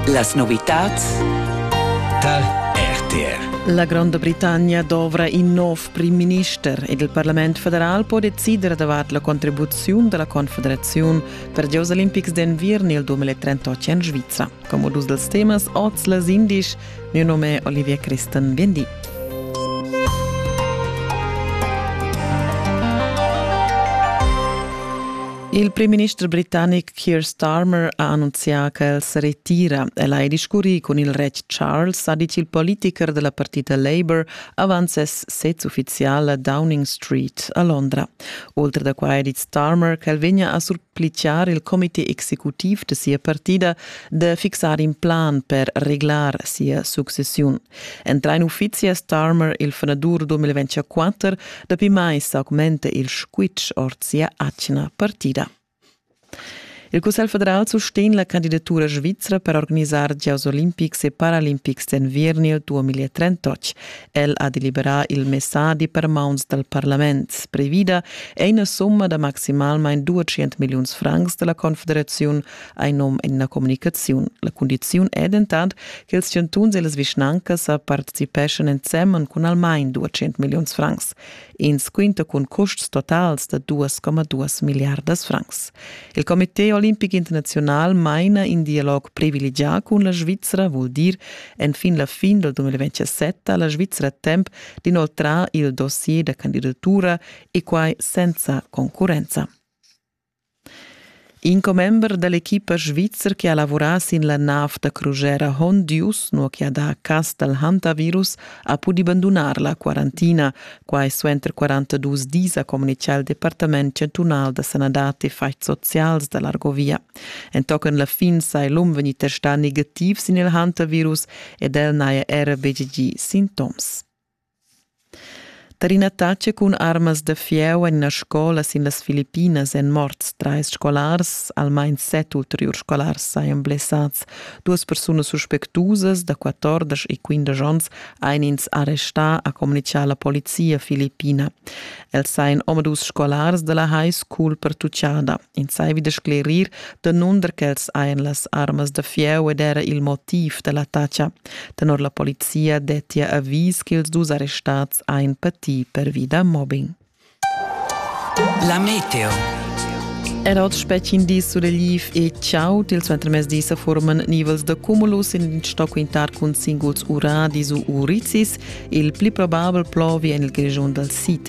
Las novitads da RTR. La Gronda Britannia dovra in nov prim-minister ed il Parlament federal po decider davart la contribuziun dalla Confederaziun per giocs olimpics d'enviern il 2038 en Svizra. Come dus dels temas oz les indisch Miu num è Olivier Christen, viendi. Il primminister britannic Keir Starmer ha annunzià che el se retira. El ha discurrì cun il retg Charles, ha dit il politiker della partita Labour avant ses sez ufficial a Downing Street a Londra. Oltre da quai ha dit Starmer che el vegna a surpliciar il comité executiv de sia partida de fixar in plan per reglar sia successiun. Entra in uffizi a Starmer il frenadur 2024, dapi mai s'augmente il squitsch ord sia atgna partida. Il Cussegl federal sustegn la candidatura svizra per organizar Gioss olimpics e paralimpics d'enviern il 2038. El ha deliberà il messadi per mauns dal parlament. Previda è ina somma da maximalmain 200 milliuns francs della Confederaziun hai num en ina communicaziun. La cundiziun è dentant che ils chantuns e las vischnancas sa participeschan ensemen cun almain 200 milliuns francs. Ins quinta cun custs totals da 2,2 milliardas francs. Il Comité olimpic internaziunal maina in dialog privilegià cun la Svizra, vul dir enfin la fin del 2027 ha la Svizra temp d'inoltrar il dossier da candidatura e quai senza concurrenza. In commember dall'equipa svizzer che ha lavurà sin la nav da crusera Hondius, nua che ha dà cas dal hantavirus, ha pudi bandunar la quarantina. Quai suenter 42 dis, ha communitgà il Departament chantunal da sanadad e faigs socials da l'Argovia. Entochen la fin sai l'um vegnì testà negativ sin il hantavirus ed el n'haja era betg gì sintoms. Tar ina taxa cun armas da fieu en ina scola sin las Filippinas èn morts trais scolars, almain set ulteriurs scolars sajan blessads. Duas persunas suspectusas da 14 e 15 onns ein ins arrestà, ha communitgà la polizia filippina. Els sajan omadus scolars da la high school pertuchada. insaivi da sclerir danunder ch'els hajan las armas da fieu ed era il motiv da l'attacca. Tenor la polizia dettia avis ch'ils dus arrestads hajan patì pervi da mobbing. La meteo. Era oz spetg in dis surregliv e ciao til suenter mezdi sa forman nivels da cumulus in in sto quintar cun singuls uradis u uricis, il pli probabel plovi en il Grischun dal sid.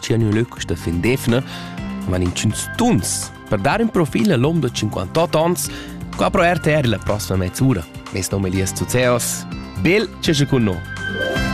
tg'en ün lö quista fin d'eivna, man intgüns tuns per dar ün profil a l'hom da 58 ans co apro RTR la prossima mezz'ura. Mes nom è Elias Zuzeos. Bel che sche con noi!